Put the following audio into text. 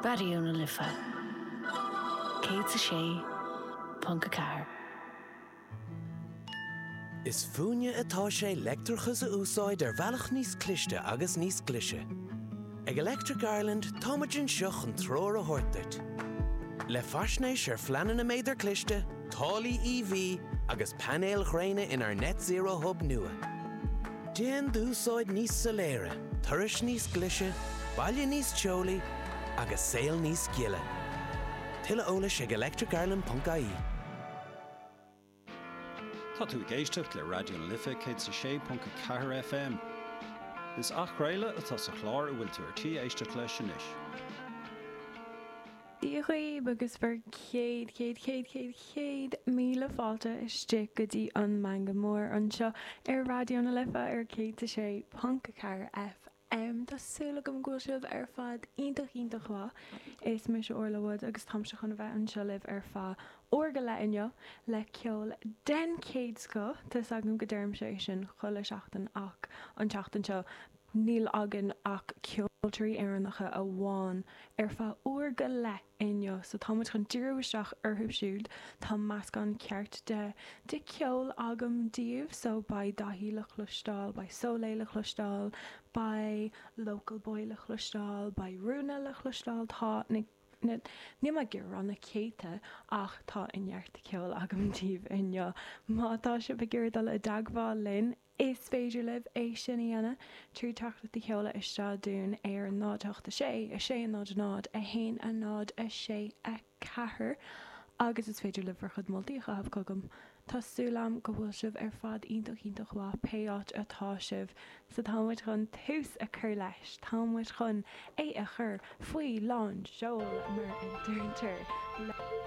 Raidió na Life 106.4. Is fúinne atá sé leictreachas a úsáid ar bhealach níos cliste agus níos glise. Ag Electric Ireland táimid anseo chun treoir a thabhairt duit. Le faisnéis ar phleananna méadar cliste, táillí EV agus painéil ghréine inár Net Zero Hub nua. Déan d'úsáid níos soiléire, turais níos glise, baile níos teolaí agus saol níos gile. Tuilleadh eolais ag electricireland.ie. Tá tú ag éisteacht le Raidió na Life 100 is 6.4 FM. Is athchraoladh atá sa chlár a bhfuil tú ar tí éisteacht leis anois. Dia dhaoibh agus bhur chéad, chéad, chéad, chéad, chéad míle fáilte isteach go dtí an Meangadh Mór anseo ar Raidió na Life ar 106.4 FM. Tá súil agam go bhfuil sibh ar fad iontach, iontach mhaith. Is mise Orla Wade agus táimse chun a bheith anseo libh ar feadh uair go leith inniu le ceol den chéad scoth. Tá 'fhios agam go deirimse é sin chuile sheachtain ach an tseachtain seo, Níl againn ach ceoltoirí Éireannacha amháin ar feadh uair go leith inniu so tá muid chun díriú isteach orthu siúd. Tá meascán ceart de de cheol agam daoibh so beidh Daithí le chloisteáil, beidh Soleil le chloisteáil, beidh Local Boy le chloisteáil, beidh Rúna le chloisteáil, tá na na níl mé ag iarraidh rá na céadta ach tá neart de ceol agam daoibh inniu. Má tá sibh ag iarraidh dul i dteagmháil linn, Is féidir libh é sin a dhéanamh trí teachtaireacht a sheoladh isteach chugainn ar an 0 8 6 6 0 0 1 0 6 4 agus is féidir libh bhur chuid moltaí a chaitheamh chugam. Tá súil agam go bhfuil sibh ar fad iontach iontach mhaith pé áit atá sibh so tá muid chun tús a chur leis, tá muid chun é a chur faoi lán seoil mar a deirtear.